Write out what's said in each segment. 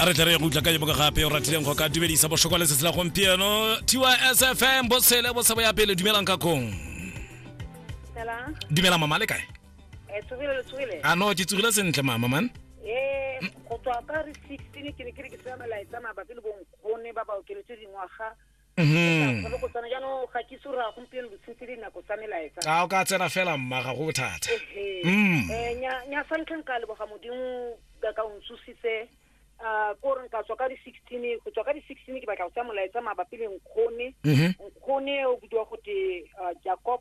a re tle re ye go utla ka yo boka gape o ratileng go ka dumedisa bošo kwa letsatsi la gompieno tysfm bosele bosebo ya pele dumelang ka kong Hello. dumela mama le kae Eh, tsogile le tsogile. a no ke tsogile sentle mama man Eh, go tswa ka re 16 ke ne ke re ke tsaya melaetsa mabapi le bonkgone ba ba okeletse dingwaga Mhm. Ka go tsana jaanong ga ke itse gore a gompieno botsheng tse dinako tsa melaetsa a o ka tsena fela mma ga go bothata Ehe. Mm. Eh, nya nya sa ntlheng ka leboga modimo ka ka o ntsositse ah, ko re nka tswa ka di-sixteen go tswa ka di-sixteen ke batla go tsaya molaetsa mabapi le nkgone Mhm. nkgone o bidiwa gote ah, jacob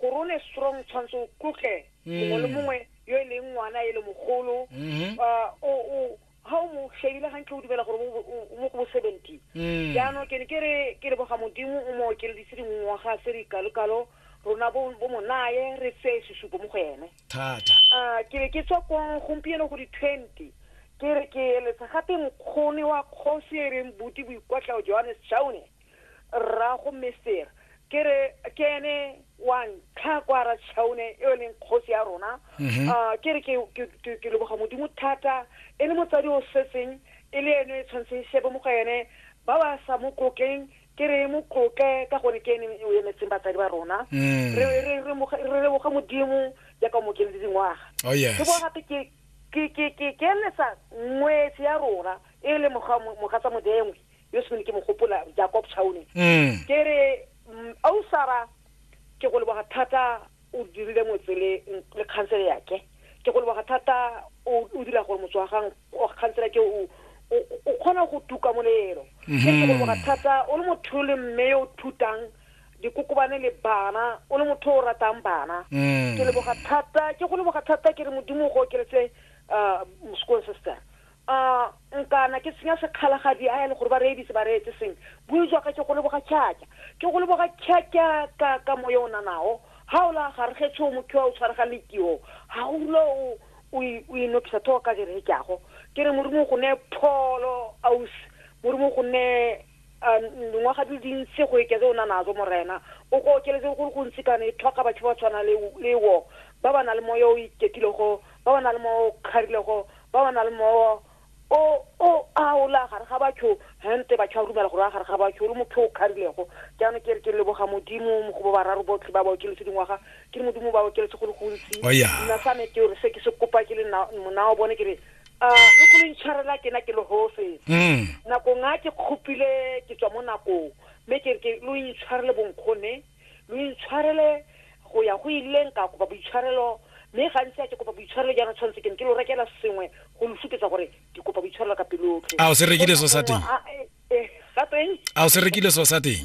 gore o ne strong tshwanetse o tlotle mongwe le mongwe yo e leng ngwana e le mogolo Mhm. Ah, o o ha o mo shebile gantle o dumela gore o o- o mo go bo seventy Mm. jaanong ke ne ke re ke re boga modimo o mo okeledise dingwaga se dikalokalo rona bo bo mo naye re tseye sesupo mo go ene thata Ah, ke be ke tswa ko gompieno go di-twenty ke re ke eletsa gape mokgone wa kgosi e reng buti boikwatlao johannes chaune rrago mester ke re ke ene wa ntlha kwa ra chaune e e leng kgosi ya rona mhm. ah, ke re ke leboga modimo thata e le motsadi o setseng e le ene e tshwanetse e shebe mo go ene ba ba sa mo tlotleng ke re mo tlotle ka gone ke ene o emetseng batsadi ba rona mm. re leboga modimo jaaka o mokeledi dingwaga oh, ke bo gape ke eletsa ngwetse ya rona e le mogatsa modengwe yo se ke mo gopola jacob chaune mm. ke re mm, ausara ke go leboga thata o dirile motsele le khansele yake ke go leboga thata o dira gore motse wa gang khansele ke o o kgona go tuka molelo ke go mm-hmm. leboga thata o le motho le mme yo o thutang dikokobane le bana o le motho o ratang bana mm. ke leboga thata ke go leboga thata ke re modimo go okeletse uh, sekolong se se A nkana ke senya sekgala ga di a ele gore ba reye dise ba reetse seng. Bui jwa ka ke go leboga tšhatša. Ke go leboga tšhatša ka ka moya o nanago. Ha o la gare ge tsho mokhiwa o tshwaregang le tio. Ha o rula o o i o inopisa tho ka ke reetšago. Ke re Morimo o go ne pholo ausi. Morimo o go ne A ngwaga di le dintsi go eketse o na nazo, Morena. O go okeletse go le gontsi kana e tlhoka batho ba tshwana le, le wo, ba ba na le moya o o iketilego, ba ba na le moya o o kgarilego, ba ba na le moya o, o, a o la gare ga batho, hente batho ba rumela gore o a gare ga batho, o le motho o kgarilego. Jaanong ke re ke leboga Modimo go ba bararo botlhe ba ba okeletse dingwaga, ke re Modimo o ba okeletse go le gontsi. O ya. Nna sa me ke re se ke se kopa ke le na, monao bone ke re a lo go le ntshwarela ke na ke lehofe mm. nakong a ke kgopile ke tswa mo nakong mme ke ke lo intshwarele bonkgone lo intshwarele go ya go ileng ka kopa boitshwarelo mme gantsi a ke kopa boitshwarelo jaana tshwanetse ke ne ke lo rekela sengwe go lo supetsa gore ke kopa boitshwarelo ka pelotlhe a o se rekile so sa teng eh, eh, eh, a o se rekile so sa teng